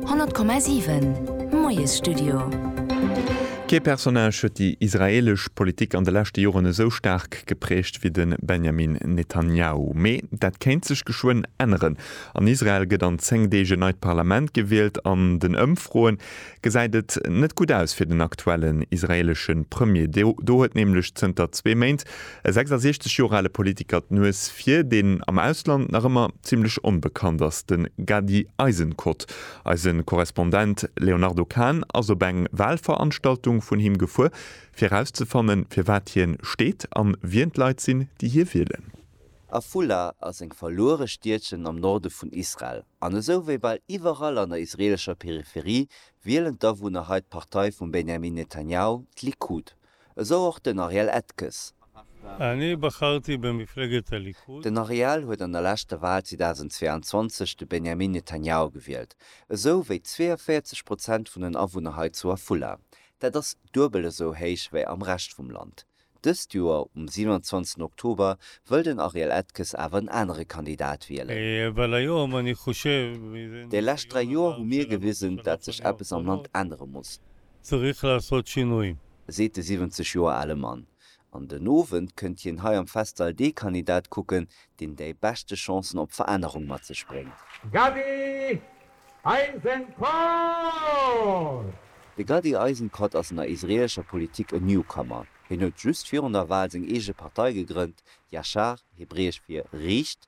100,7 Moiesstudio. Kee Personnage huet déi israeelesch Politik an de leschte Joren esou staark geprägt wéi de Benjamin Netanjahu. Mee dat kéint sech geschwënn änneren. An Israel gëtt an 10 Deeg en neit Parlament gewielt. An den Ëmfroe gesäit et net gutt aus fir den aktuellen israeelesche Premier. Do huet nämlech zënter zwee Méint E 66 Joer ale Politiker d'Nues vir, deen am Ausland nach ëmmer zimmlech onbekannt ass, de Gady Eisenkot. Eise Korrespondent Léonardo Kahn ass op eng Walveranstaltung vun him gefuer, fir erauszefannen, fir wat hien steet an wien d'Leit sinn, déi hie wielen. Afula ass eng verluere Stiedchen am Norde vun Israel, an esou wéi bal iwwerall an der israeelescher Peripherie wielen d'Awunner hei d'Partei vum Benjamin Netanjahu, d'Likud. Esou och den Ariel Etges. Den Ariel huet an der leschter Wal 2022 de Benjamin Netanyahu gewielt, esou wéi 42 Prozent vun den Awunner hei zu Afula. Dat ass duebel esou héich wéi am Rescht vum Land. Dëst Joer um 27 Oktober wëll den Ariel Etges awer en anere Kandidat wielen. Déi lescht dräi Joer hu mir gewisen, dat sech eppes am Land ännere muss. Zurich la Sochi nui. Seet de 70 Joer ale Mann. An den Owend kënnt hien hei am Festsall dee Kandidat kucken, deen dei beschte Chancen op Verännerung mat sech bréngt. Gadi Eisenkot! De Gadi Eisenkot ass an der israeelescher Politik en Newcomer. Hien huet just virun der Wal seng eege Partei gegrënnt, Yashar, hebräesch fir riicht,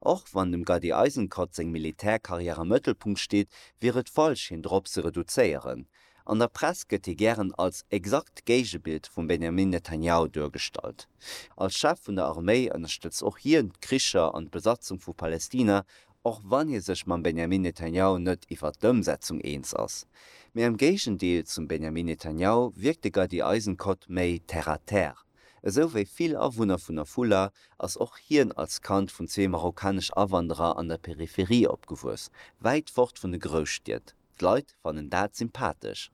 Och wann dem Gady Eisenkot seng Militärkarriär am Mëttelpunkt steet, wier et falsch hien drop ze reduzéieren. An der Press gëtt hie gären als exakt Géigebild vum Benjamin Netanjahu duergestallt. Als Chef vun der Arméi ënnerstëtzt och hien d'Kricher an d'Besatzung vu Palestina, och wann hie sech mam Benjamin Netanjahu net iwwert d'Ëmsetzung eens ass. Mee am Géigendeel zum Benjamin Netanjahu wierkt de Gady Eisenkot méi terre à terre. Esou wéi vill Awunner vun Afula ass och hien als Kand vun zwee marokkanesch Awanderer an der Peripherie opgewuess, wäit fort vun de Grousstied. D'Leit fannen dat sympathesch.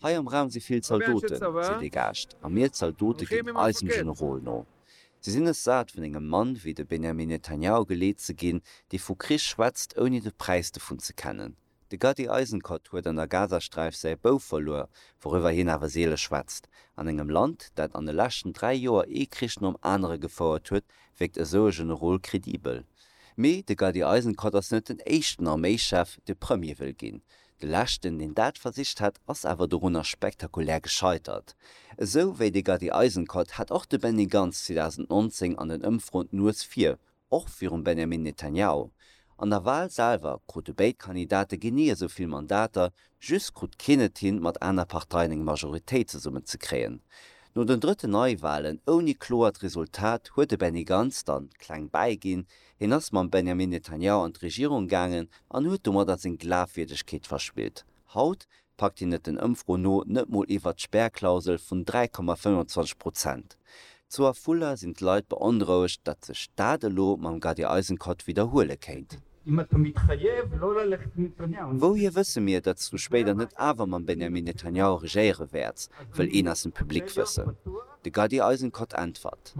Hei am Raum si vill Zaldoten, si degaascht, a mir Zaldote ginn eisem Generol no. Si sinn es sat vun engem Mann wéi de Benjamin Netanyahu geleet ze ginn, dee vu Krich schwätzt ouni de Präis dovun ze kennen. De Gadi Eisenkot huet an der Gazasträif säi Bouf verluer, wouriwwer hien awer seele schwätzt. An engem Land, dat an de leschten dräi Joer ee Krich nom anere gefouert huet, wierkt esou e Generol kredibel. Mee de Gadi Eisenkot ass net den éischten Arméichef, dee Premier wëll ginn. De leschten, deen dat versicht hat, ass awer dorunner spektakulär gescheitert. Esou wéi de Gadi Eisenkot hat och de Benny Gantz 2019 an den Ëmfroen d'Nues vir och virum Benjamin Netanyahu. An der Wal selwer krute béid Kandidate genee esou vill Mandater, just krut keen et hin, mat aner Parteien eng Majoritéit zesummen ze kréien. No den drëtten Neiwalen ouni kloert Resultat huet de Benny Gantz dann kleng bäi ginn, hien ass mam Benjamin Netanyahu an d'Regierung gaangen an huet domadder seng Glafwierdegkeet verspillt. Haut packt hien et den Ëmfroen no net mol iwwert d'Spärklausel vun 3,25 Prozent. Zu Afula sinn d'Leit beonrouegt, datt sech dat elo mam Gadi Eisenkot widderhuele kéint. Wouhier wësse mir, datt s du spéider net awer mam Benjamin Netanyahu regéiere wäerts? wëll een aus dem Public wëssen. De Gadi Eisenkot äntwert.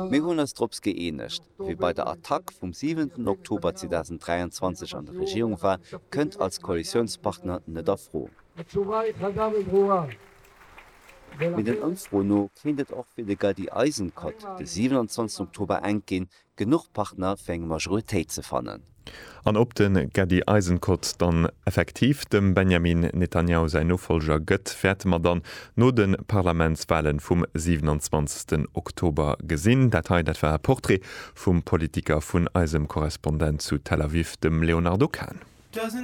Mir hunn eis drops gëeenegt, wie bei der Attack vum 7 Oktober 2023 an der Regierung war, kënnt als Koalitiounspartner net a Fro. Mee den Ëmfroen no kéint et och fir de Gaddi Eisenkot de 27 Oktober enk ginn, genuch Partner fir eng Majoritéit ze fannen. An ob de Gadi Eisenkot dann effektiv dem Benjamin Netanjahu säin Nofollger gëtt, wäerte mer dann no de Parlamentswalen vum 27 Oktober gesinn. Dat hei, dat war e Portrait vum Politiker vun eisem Korrespondent zu Tel Aviv, dem Léonardo Kahn.